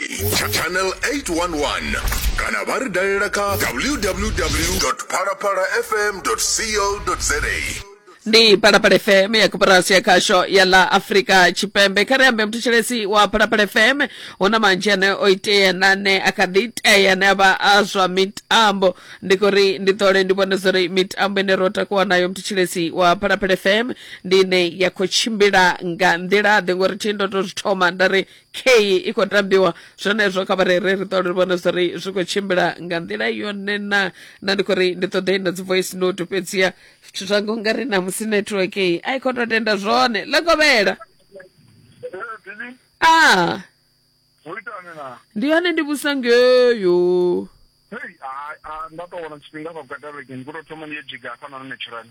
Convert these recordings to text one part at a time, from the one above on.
Cha- channel 811 kana vha ri dalela kha www phalaphala fm co za ndi phalaphala fm ya koporasi ya khasho ya ḽa afrika tshipembe kha ri ambe muthetshelethi wa phalaphala fm hu na manzhi ane o itea na ane a kha ḓi itea ane a vha a zwa mitambo ndi khou ri ndi ṱole ndi vhone zwa uri mitambo ine ro takuwa nayo muthetshelethi wa phalaphala fm ndi ine ya khou tshimbila nga nḓila-ḓe ngori thi ndo to zwi thoma nda ri kheyi i khou tambiwa zwenezwo kha vha rere ri ṱole ri vhone zwa ri zwi khou tshimbila nga nḓila yone na na ndi khou ri ndi ṱoḓa i na dzi voice note fhedziha zwithu zwa ngo nga ri namusi network i a i khou tou tenda zwone ḽekovhela a ndi hone ndi vhusa ngeyo nda tou wana tshifhinga vha gwada vhege ndi khou tou thoma ndi yo dzhiga hafhanoni naturally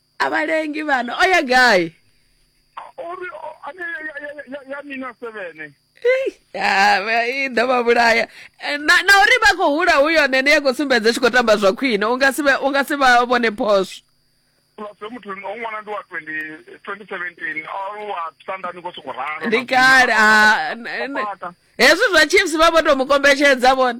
a vha lengi vhana o ya gai uri ane ya mina sevene i ḓo vha vhulaya eh, na na uri vha khou hula hu yone ene ya khou sumbedza tshi khou tamba zwa khwine u nga si u nga si vha vhone phoswo plus muthu o ṅwana ndi wa 2017 o wa sandani ko sokou ralo ndi kale hezwi zwa chiefs vha vho tou mu kombetshedza vhone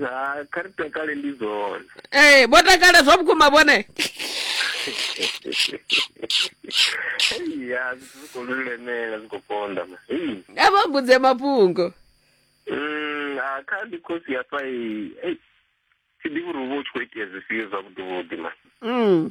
ha kha ri takale ndi zwone ee vho takala zwa vhukuma vhone ya zwi khou lulemela zwi khou konda ma Ei. a vha mbudze mafhungo Mm, ha kha ndi khosi hafha i- ei, thi ḓivhi uri hu vha hu tshi khou itea zwifhio zwavhuḓivhuḓi ma mm.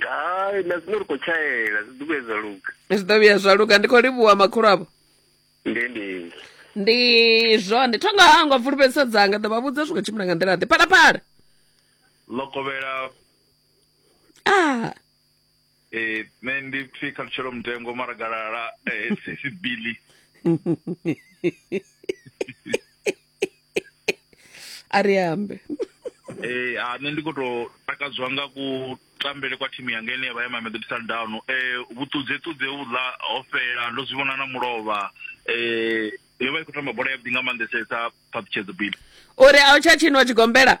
hai na zwino ri khou tshaela zwi ḓo vhuya zwa luga zwi ḓo vhuya zwa luga ndi khou livhuwa makhulu avho ndi ndi ndi zwone thonga hangwa fulufhedzisa dzanga ḓo vha vhudza zwi khou tshimbila nga nḓila ḓe phalaphala lokovhela ah eh nṋe ndi pfi khalutshelo mutengo mara galala eh sisi billy a ri ambe eh a nṋe ndi khou tou takadziwa nga ku tambele kwa thimu yanga ine ya vha ya mamelodi sundown eh vhuṱudze ṱudze vhuḽa ho fhela ndo zwi vhona na mulovha eh yo vha i khou tamba bola yavhuḓi nga maanḓesesa phaṱhutshedzo bibi uri a u tsha tshinwa tshigombela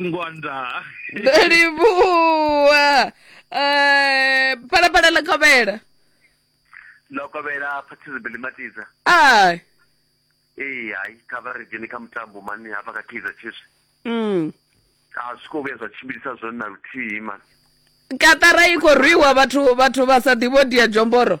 ngwanda ndo livhuwa Eh, phalaphala ḽa khovhela ḽo kovhela participant matiza a ee hai kha vha ri dzheni kha mutambo mani hafha kha kaizer chiefs mm. a zwi khou vhuya zwa tshimbilisa zwone na luthihi mani katara i khou rwiwa vhathu vhathu vha sa ḓivho dia jomboro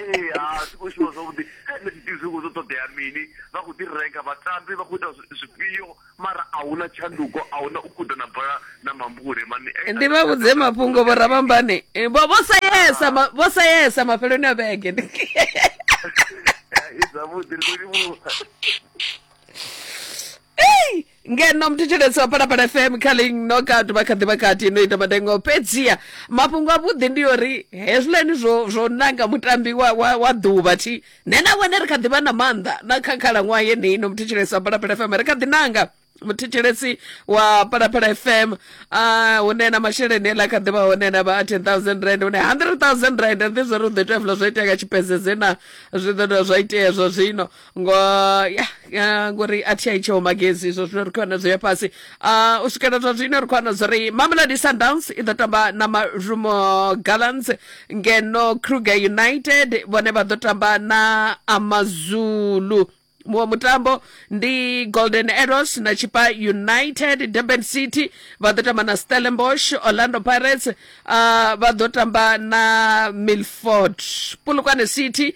ee ha si khou shuma zwavhuḓi nṋe ndi ḓivhi zwikho zwo ṱoḓea mini vha khou ḓi renga vhatambi vha khou ita zwifhio mara a hu na tshanduko a hu na u guda na bola na mambule mani ndi vha vhudze mafhungo vho rabambani vho vho sayesa ma- vho sayesa mafheloni a vhege zwavhuḓi ri khou livhuwa Ei! ngeno mthetshelesi wa phalaphala fm kha ling knockout vha kha ḓi vha kati no ita madengo fhedziha mafhungo avhuḓi ndi uri hezwiḽani zwo zwo nanga mutambi wa, wa, wa ḓuvha thi nṋe na wene ri kha ḓi vha na maanḓa na kha khalaṅwaha yeneyi no mthetshelesi wa phalaphala fm ri kha ḓi nanga muthetshelesi wa phalaphala fm uh, hune na masheleni eḽa kha ḓivha hone na vha a 10000 rand hune 100000 rand ri ḓi zwo ri u ḓo itea fula zwo itea nga tshipedzeze na zwi ḓo dovha zwa itea zwa zwino ngo ya ya, ngori a thi a itsheho magezi izwo zwino ri khou wana zwo ya fhasi Ah, u swikela zwa zwino ri khou wana zwori mamelodi sundowns i ḓo tamba na marumo gallants ngeno kruger united vhone vha ḓo tamba na amazulu muṅwe mutambo ndi golden arrows na chipa united durban city vha ḓo tamba na stellenbosch orlando pirates uh, vha ḓo tamba na milford polokwane city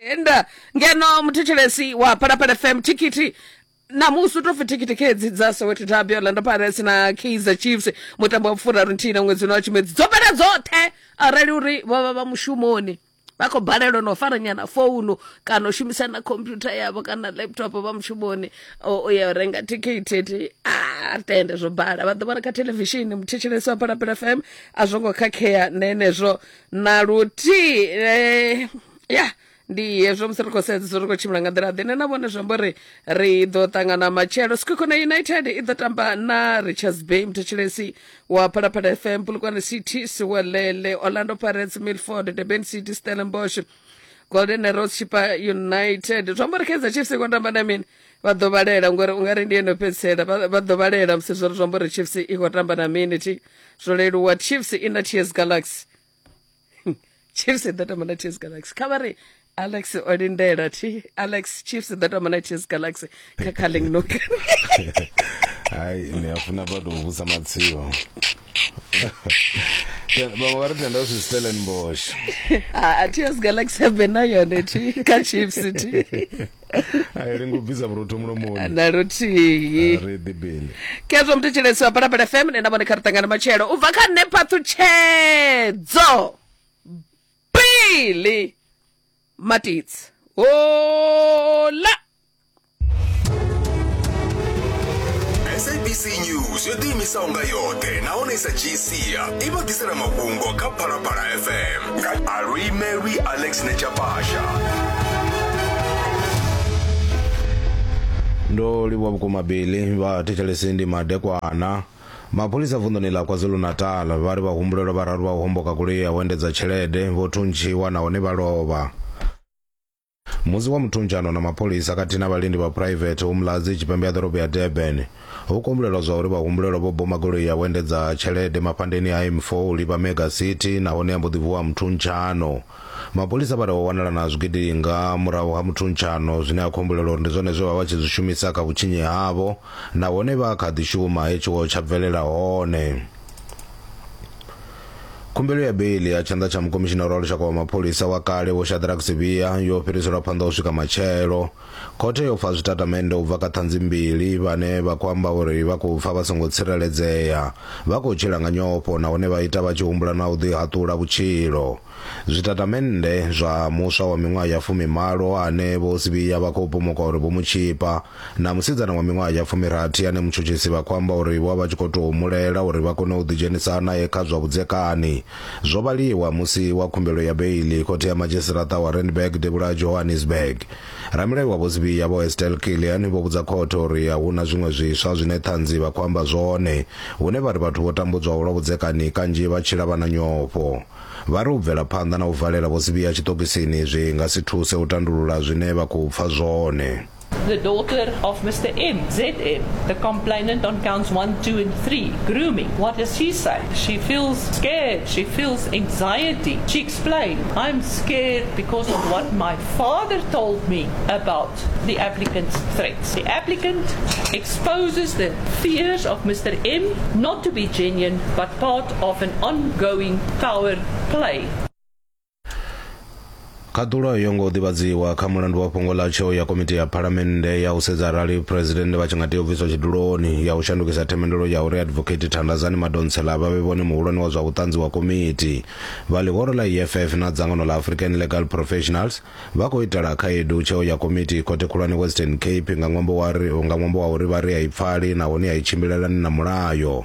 enda ngeno muthetshelesi wa phalaphala fm thikhithi namusi u tou pfi thikhithi khedzi dza soweto derby orlando pirates na kaizer chiefs mutambo wa furaru nthihi na ṅwedzi uno wa tshimedzi dzo fhela dzoṱhe arali uri vho vha vha mushumoni vha khou balelwa na u fara nyana founu kana u shumisa na computer yavho kana laptop vha mushumoni o o ya u renga thikhithi ti a tende zwo bala vha ḓo vhona kha televishini muthetshelesi wa phalaphala fm a zwo ngo khakhea na henezwo na luthihi eh, ya ndi hezwo musi ri khou sedza zwo ri khou tshimbila nga nḓila ḓe ne na vhone zwi amba uri ri ḓo ṱangana matshelo sikhokho na united i ḓo tamba na richards bay muthetshilesi wa phalaphala fm pulukwane city siwelele orlando pirates milford durban city stellenbosch golden arrows chipa united zwi amba uri kaizer chiefs i khou tamba na mini vha ḓo vhalela ngori u nga ri ndi yeno fhedzisela vha ḓo vhalela musi zwo ri zwi amba uri chiefs i khou tamba na mini thi zwo leluwa chiefs i na ts galaxy chiefs i ḓo tamba na ts galaxy kha vha ri alex o lindela thi alex chiefs i ḓo tamba na ts galaxy kha calling nok hayi ni a funa vha tou vhusa matsio vhaṅwe vha ri tenda u zwi stellenbosh a ts galaxy a vhe na yone thi kha chiefs thi ayi lengo bvisa vhurotho mulomoni na luthihi re bibele kezwo muthetshelesi wa balabala fm ne na vhone kha ri ṱangana matshelo u bva kha nṋe phaṱhutshedzo bili matitsi hola sabc news yo ḓiimisaho nga yoṱhe nahone i sa dzhii sia i vha ḓisela mafhungo kha phalaphala fm Arui Mary Alex Nechapasha. ndo livhuwa vhukuma bili vha thetshelesi ndi madekwana mapholisa vunḓuni ḽa kwazulu-natal vha ri vhahumbulelwa vhararu vha u homboka goloi ya u endedza tshelede vho thuntshiwa nahone vha lovha musi wa muthunjano na mapholisa khathihi na vhalindi vha phuraivethe u Mladzi tshipembe ha ḓorobo ya Durban ho kumbulelwa zwa uri vhahumbulelwa vho boma goloi ya vhuendedza tshelede mafhandeni a M4 u livha Mega City nahone ya mbo ḓi vuwa muthunjano. Mapholisa vha ri ho wanala na zwigidi nga murahu ha muthunjano zwine ha khumbulelwa uri ndi zwone zwe vha vha tshi zwi shumisa kha vhutshinyi havho nahone vha kha ḓi shuma he tshiwo tsha bvelela hone. Khumbelo ya beiḽi ya tshanḓa tsha mukomishinara wa lushaka wa mapholisa wa kale Vho Shadrack Sibiya yo fhiriselwa phanḓa u swika matshelo. Khothe yo pfa zwitatamennde u bva kha ṱhanzi mbili vhane vha khou amba uri vha khou pfa vha songo tsireledzea, vha khou tshila nga nyofho nahone vha ita vha tshi humbula na u ḓihaṱula vhutshilo. Zwitatamennde zwa muswa wa miṅwaha ya fumimalo ane Vho Sibiya vha khou pomoka uri vho mu tshipa na musidzana wa miṅwaha ya fumirathi ane mutshutshisi vha khou amba uri vho vha vha tshi khou tou mu lela uri vha kone u ḓidzhenisa nae kha zwa vhudzekani, zwo vhaliwa musi wa khumbelo ya beiḽi Khothe ya Madzhisiṱaraṱa wa Randburg Devhula Johannesburg. Ramulayo wa Vho Sibiya Vho Estelle Killian vho vhudza khothe uri a hu na zwiṅwe zwiswa zwine ṱhanzi vha khou amba zwone hune vha ri vhathu vho tambudzwaho lwa vhudzekani kanzhi vha tshila vha na nyofho. Vha ri u bvela phanḓa na u valela Vho Sibiya tshiṱokisini zwi nga si thuse u tandulula zwine vha khou pfa zwone. the daughter of Mr. M, ZM, the complainant on counts 1, 2 and 3, grooming. What does she say? She feels scared. She feels anxiety. She explained, I'm scared because of what my father told me about the applicant's threats. The applicant exposes the fears of Mr. M not to be genuine but part of an ongoing power play. khaṱulo yo ngo ḓivhadziwa kha mulandu wa fhungo ḽa tsheo ya komiti ya phalamennde ya u sedza arali phuresidennde vha tshi nga tea u bviswa tshiduloni ya u shandukisa themendelo ya uri advocate thandazani madontsela vha vhe vhone muhulwane wa zwa vhuṱanzi wa komiti vha ḽihoro ḽa eff na dzangano ḽa african legal professionals Vha khou itela khaedu tsheo ya komiti Khothe Khulwane Western Cape nga ṅwambo wa ri nga ṅwambo wa uri vha ri a i pfali nahone a i tshimbilelani na mulayo.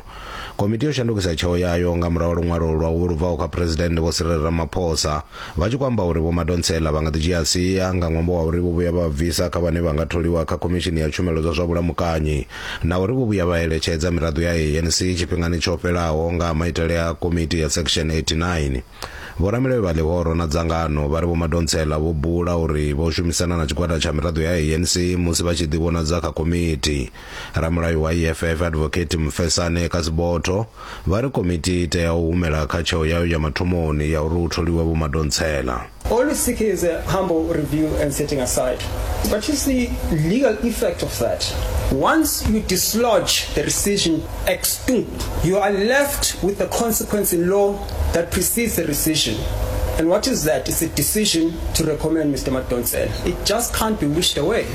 Komiti yo shandukisa tsheo yayo nga murahu ha luṅwalo lwa vho lu bvaho kha Phresidennde Vho Cyril Ramaphosa vha tshi khou amba uri Vho Madonsela vha nga ḓi dzhia sia nga ṅwambo wa uri vho vhuya vha bvisa kha vhane vha nga tholiwa kha Khomishini ya Tshumelo dza zwa Vhulamukanyi na uri vho vhuya vha eletshedza miraḓo ya ANC tshifhingani tsho fhelaho nga ha maitele a komiti ya Section 89. Vhoramilayo vha ḽihoro na dzangano vha ri Vho Madonsela vho bula uri vho shumisana na tshigwada tsha miraḓo ya ANC musi vha tshi ḓivhonadza kha komiti. Ramulayo wa EFF Advocate Mfesane Kasibotho vha ri komiti i tea u humela kha tsheo yayo ya mathomoni ya uri hu tholiwe Vho Madonsela. All we seek is a humble review and setting aside. But you see legal effect of that. Once you dislodge the rescission Extub, you are left with a consequence in law that precedes the rescission. And what is that? It's a decision to recommend Mr. Madonsela. It just can't be wished away.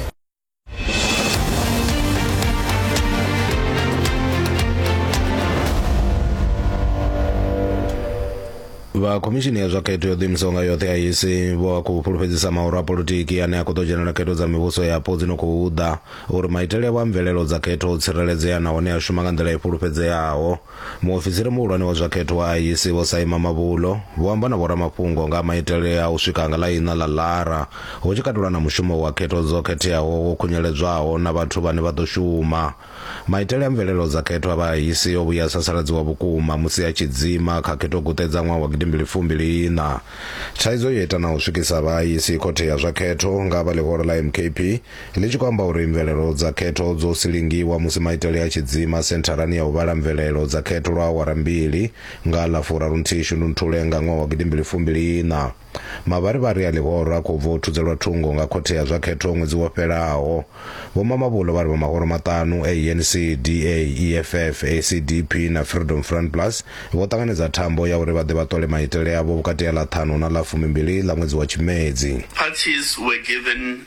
vha khomishini ya zwa khetho yo ḓiimisaho nga yoṱhe ya isi vho a khou fhulufhedzisa maoro a politiki ane a khou ḓo dzhenela khetho dza mivhuso yapo dzi no khou ḓa Uri maitele avho a mvelelo dza khetho o tsireledzea nahone a shuma nga nḓila i fhulufhedzeaho, muofisiri muhulwane wa zwa khetho wa IEC Vho Saima Mabulo vho amba na vhoramafhungo nga ha maitele a u swika nga ḽa iṋa ḽa Lara, hu tshi katelwa na mushumo wa khetho dzo khetheaho wo khunyeledzwaho na vhathu vhane vha ḓo shuma. Maitele a mvelelo dza khetho a vha IEC o vhuya a sasaladziwa vhukuma musi a tshi dzima kha khethoguṱe dza ṅwaha wa gidimbili fumbili iṋa. Thaidzo yo ita na u swikisa vha IEC khothe ya zwa khetho nga ha vha ḽihoro ḽa MKP, Ndi tshi khou amba uri mvelelo dza khetho dzo silingiwa musi maitele a tshi dzima sentharani ya u vhala mvelelo dza khetho lwa awara mbili nga ḽa furarunthihi Shundunthule nga ṅwaha wa gidimbili fumbili iṋa. Mavharivhari a ḽihoro a khou bva u thudzelwa thungo nga khothe ya zwa khetho ṅwedzi wo fhelaho. Vho Mamabolo vha ri vha mahoro maṱanu a ANC, DA, EFF, ACDP na Freedom Front Plus vho ṱanganedza thambo ya uri vha ḓe vha ṱole maitele avho vhukati ha ḽa ṱhanu na ḽa fumimbili ḽa ṅwedzi wa Tshimedzi. Parties were given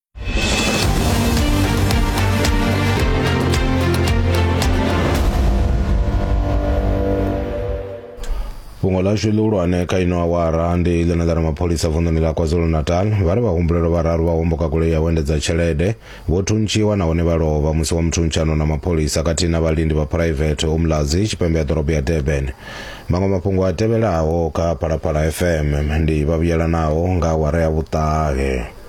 fhungo ḽashu ḽihulwane kha ino awara ndi ḽine ḽa ri mapholisa vunḓuni ḽa kwazulu-natal vha ri vhahumbulelo vhararu vha homboka goloi ya u endedza tshelede vho thuntshiwa nahone vha lovha musi wa muthuntshanwo na mapholisa khathihi na vhalindi vha phuraivethe umlazi tshipembe ya ḓorobo ya durban maṅwe mafhungo a tevhelaho kha phalaphala fm ndi vhavhuyelanaho nga awara ya vhuṱahe